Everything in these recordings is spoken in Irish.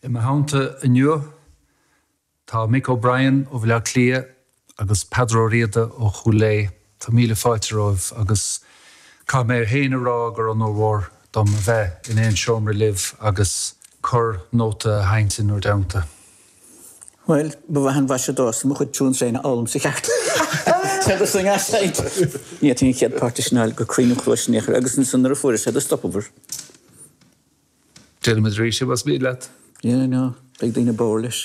I mo theannta inniu tá Mick O'Brien ó Bhaile Átha Cliath agus Peadar Ó Riada ó Chúil Aodha. Tá míle fáilte romhaibh agus caithfidh mé féin a rá gur onóir mhór dom a bheith in aon seomra libh agus corr-nóta a sheinnt in bhur dteannta. Bhuel, ba mhaith an mhaise domhsa mo chuid tunes féin a fhoghlaim i gceart sé do sing as said. Níor tháinig an chéad páirt de Sineáil go cruinn im chluais in aon chor agus ansan nuair a fuaireas é do stopamar. Deirim iad arís, más mian leat. Yeah, I know. Beidh daoine bodhar leis.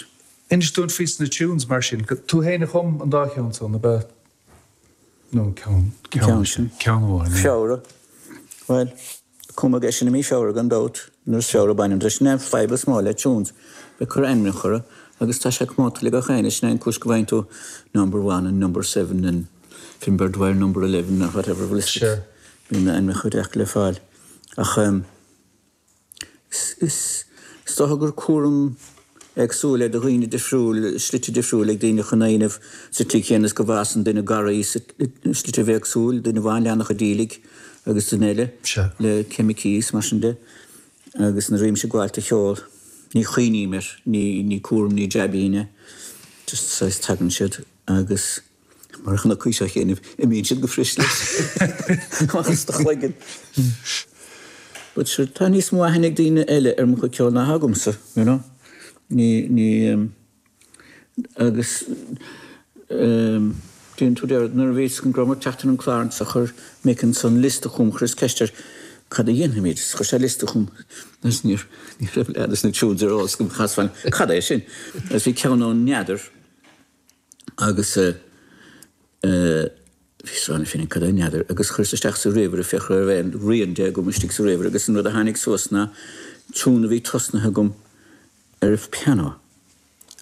Inis dúinn fés na tunes mar sin. Tú féin a chum an dá cheann san, ab ea? Nó an ceann sin. Ceann amháin, é. Feabhra. Bhuel, cumadh é sin i mí Feabhra gan dabht, nuair is Feabhra a bhaineann leis. Sin é an fadhb is mó le tunes, bheith ag cur ainmneacha orthu, agus tá sé comónta le gach éinne, sin é an cúis go bhfaigheann tú Number One and Number Seven and Finbarr Dwyer Number Eleven or whatever, bhuel is ea, bíonn ainmneacha deacair le fáil ach. Is dócha gur cúram éagsúil é do dhaoine difriúil, slite difriúla ag daoine chun é a dhéanamh sa tslí chéanna is go bhfásann duine garraí i slitibh éagsúil, duine amháin leannacha díligh agus duine eile le ceimicí is mar sin de. Agus nuair a bhímse ag gabháilt de cheol, ní chuimhním air, ní cúram, ní jaibín é, just saghas tagann siad agus. Mar a chonaicís fhéinig, imíonn siad go fuirist leis as do chloigeann. But sure, tá níos mó aithne ag daoine eile ar mo chuid ceoil ná agamsa, you know. Ní, ní, em, agus, em, díonn tú deir, nuair a bhí a fhios go rabhamar ag teacht ar an gclár seo chuir Mick ansan list chugham, chuireas ceist air cad a dhéanfaimid, chuir sé list chugham, agus ní, ní raibh leath des na tunes ar os go chasfainn, cad é sin? Agus bhí ceann ann, n'fheadar. agus chuireas isteach sa ríomhaire féachaint an mbeadh aon rian de agam istigh sa ríomhaire agus an rud a tháinig suas ná tiún a bhí tosnaithe agam ar an phianó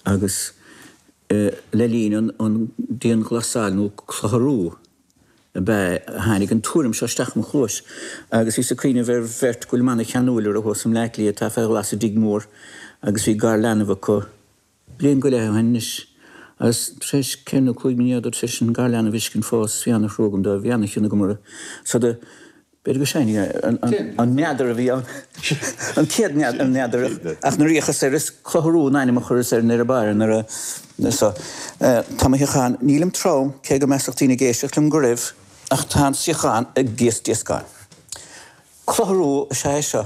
agus le linn an dianghlasáil nó clutharú ab ea a tháinig an tuairim seo isteach im' chluais agus bhíos ag cuimhneamh ar bheirt go bhfuilim ana-cheanúil orthu thuas i mBleácliath atá fé ghlas i dtigh mór agus bhí garleanbh acu Bliain go leith ó shin anois, agus tréis ceithre nó cúig mí ní rabhadar tréis an garleanbh a fheiscint fós bhí ana-thrua agam dóibh bhí ana-chion agam orthu so do b'fhéidir gur sin é an meadar a bhí ann, an chéad mheadar, ach na ríocha soir is clutharú an ainm a chuireas ar an ar a bharr nuair a so tá mo shuíochán, nílim trom, cé go measfadh daoine ag éisteacht liom go raibh, ach tá an suíochán ag díoscán. Clutharú is ea é seo.